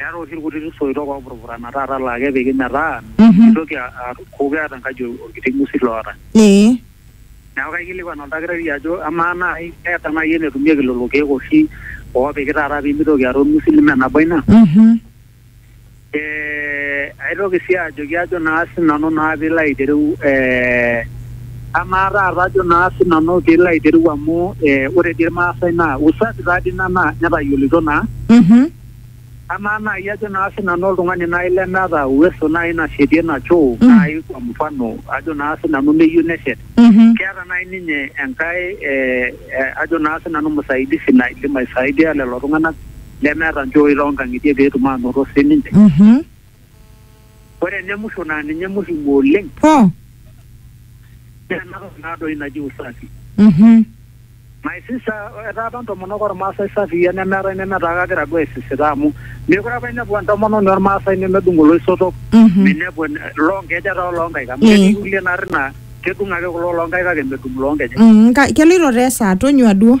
Eeta oshi ilkutiti soitok oopurupurana taata laa kepiki metaa meitoki aaku keeta enkaji olkiti ngusit loota. Neaku kaikilikwan oldakitari ajo amaa naai keeta naai enetumieki lelo keek oshi oopiki taata piimitoki aata olng'usil ime nabo ina? Eeh aitoki sii ajoki ajo naa sinanu naa piilo aitereu eeh amaa taata ajo naa sinanu piilo aitereu amu ore dii ilmaasai naa usafi taadii ina netayioloito naa. Amaa naai ajo naa sinanu oltung'ani naai lemeeta uweso naai nashetie ina choo Mm. naai kwa mfano ajo naa sinanu neyieu neshet, Mhm. keeta naai ninye enkae eh, eh, ajo naa sinanu msaidizi naidim aisaidia lelo tung'anak lemeeta nchooi toonkang'itie peetum aanoto sininche. Mhm. Ore ene musho naa ninye muhimu oleng Oh. naa ena toki naa doi naji usafi. Mhm. My sister, etaa apa ntomonok ormaasai safii enemeetae nemetaa kagira duo aisisita amu mekure apa inepu entomononi ormaasai nemedung oloisotok, Mhm. minepu en- loonkejek ata oloonkaik amu Eh. ketii kulie naarri naa kedung ake kulo loonkaik kake medung loonkejek. Mm, ka- keloito taa esaa tonyua duo.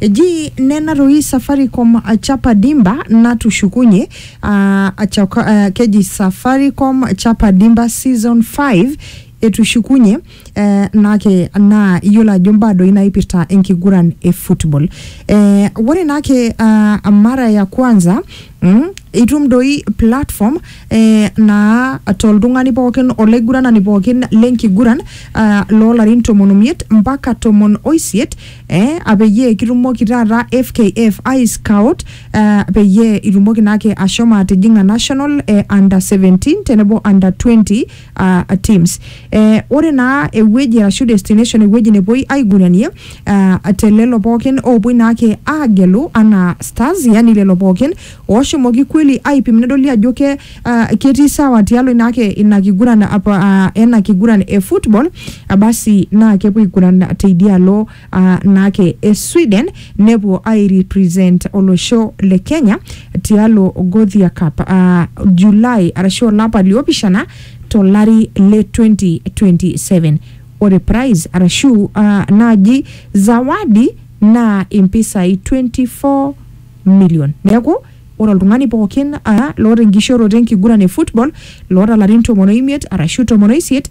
Eji nena toi Safaricom chapa dimba natushukunye aa achoka, aa, keji Safaricom chapa dimba season 5 etushukunye ee naake naa iyiolo ajo mbaa doi naipirta enkiguran e football. Ee ore naake aa mara ya kwanza Mm? itum doi platform eh, naa toltung'ani pookin olaiguranani pookin lenkiguran uh, loolarin tomon omiet mpaka tomon oisiet eh, apeyie kitumoki taata fkf ai scout uh, peyie itumoki naake ashomo atijing'a national eh, under 17 tenebo under 20 uh, teams eh, ore naa ewueji arashu destination ewueji nepuoi aiguranie uh, te lelo pookin oopuoi naake aagelu anaa stars yani lelo pookin ooshomoki kweli aipim nedoli ajo ke uh, ketii sawa tialo inaake ina kiguran apa uh, ena kiguran e football uh, basi naa kepuo aiguran teidialo aa naake e Sweden nepuo aairepresent olosho le Kenya tialo Gothia Cup aa July arashu olapa liopishana to lari le 2027. Ore prize arashu aa naaji zawadi naa impisai 24 million. Neeku ore oltung'ani pookin aa loota enkishooroto enkiguran e football loota ilarin tomon o imiet arashu tomon o isiet